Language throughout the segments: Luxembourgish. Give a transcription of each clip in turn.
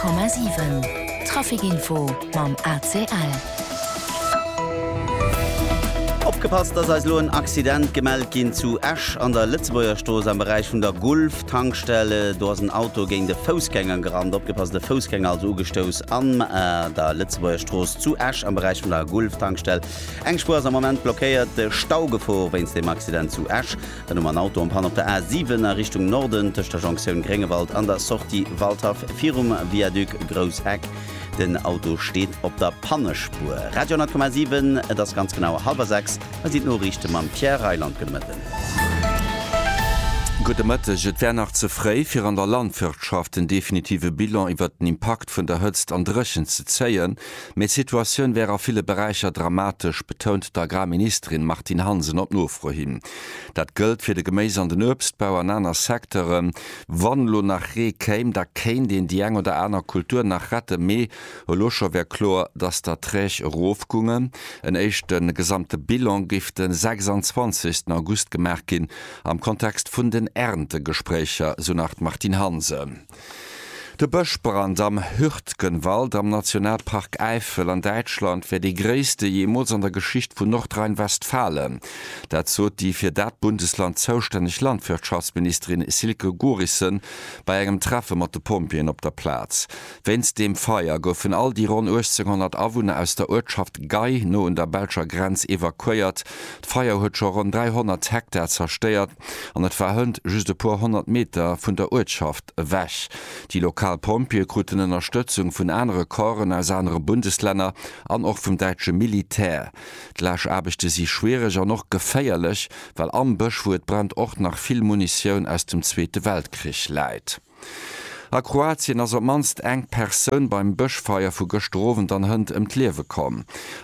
100,7 Trafic Info mam ACL. Opgepasst, dass eis elo en Accident gemellt ginn zu Esch an der Lëtzebuergerstrooss am Beräich vun der Gulf Tankstelle. Do ass en Auto géint e Foussgänger gerannt. Opgepasst, e Foussgänger also ugestouss am der Lëtzebuergerstrooss zu Esch am Beräich vun der Gulf Tankstelle. Eng Spuer ass am Moment blockéiert. Staugefor wéinst dem Accident zu Esch. Dann hu mer en Auto en panne op der A 7 a Richtung Norden tëscht der Jonktioun Gréngewald an der Sortie Waldhaff virum Viaduc Grouss Heck. Den Auto steet op der Pannespuer. Radio 10,7 Et ass ganz genau hallwer 6. Hei sinn d'Noriichte mam Pierre Reyland. Gudde Mëtten. Gudde Mëtteg. Et wär nach ze fréi, fir an der Landwirtschaft en definitive Bilan iwwert den Impakt vun der Hëtzt an Dréchent ze zéien. Mee d'Situatioun wär a ville Beräicher dramatesch, betount d'Agrarministerin Martine Hansen op Nofro hin. Dat gëllt fir de Geméis an den Uebstbau an aner Secteuren. Wann elo nach Ree kéim, da kéint een déi eng oder aner Kultur nach rette, mee elo scho wär kloer, datt d'Erträg erofgungen. En éischte gesamte Bilan géif de 26 August gemaach ginn, am Kontext vun den Erntegespréicher, sou nach d'Martine Hansen. De Bëschbrand am Hürtgenwald am Nationalpark Äifel an Däitschland wär dee gréisste jeemools an der Geschicht vun Nordrhein-Westfalen. Dat sot déi fir dat Bundesland zoustänneg Landwirtschaftsministerin Silke Gorissen bei engem Treffe mat de Pompjeeën op der Plaz. Wéinst deem Feier goufen all déi ronn 1.800 Awunner aus der Uertschaft Gey, no un der belscher Grenz, evakuéiert. D'Feier huet scho ronn 300 Hektar zerstéiert. An et war hënt just e puer honnert Meter vun der Uertschaft ewech. Déi lokal Pompjeeë kruten Ënnerstëtzung vun anere Corpsen aus anere Bundeslänner an och vum däitsche Militär. D'Laaschaarbechte si schwiereg an och geféierlech, well am Bësch, wou et brennt, och nach vill Munitioun aus dem Zweete Weltkrich läit. A Kroatien ass op d'mannst eng Persoun beim Bëschfeier vu gëschter Owend an Hënt ëm d'Liewe komm.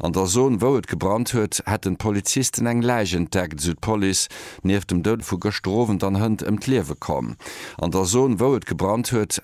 An der Zon, wou et gebrannt huet, hätten d'Polizisten eng Läich entdeckt, esou d'Police. Nieft dem Doud vu gëschter Owend an Hënt ëm d'Liewe komm. An der Zon, wou et gebrannt huet,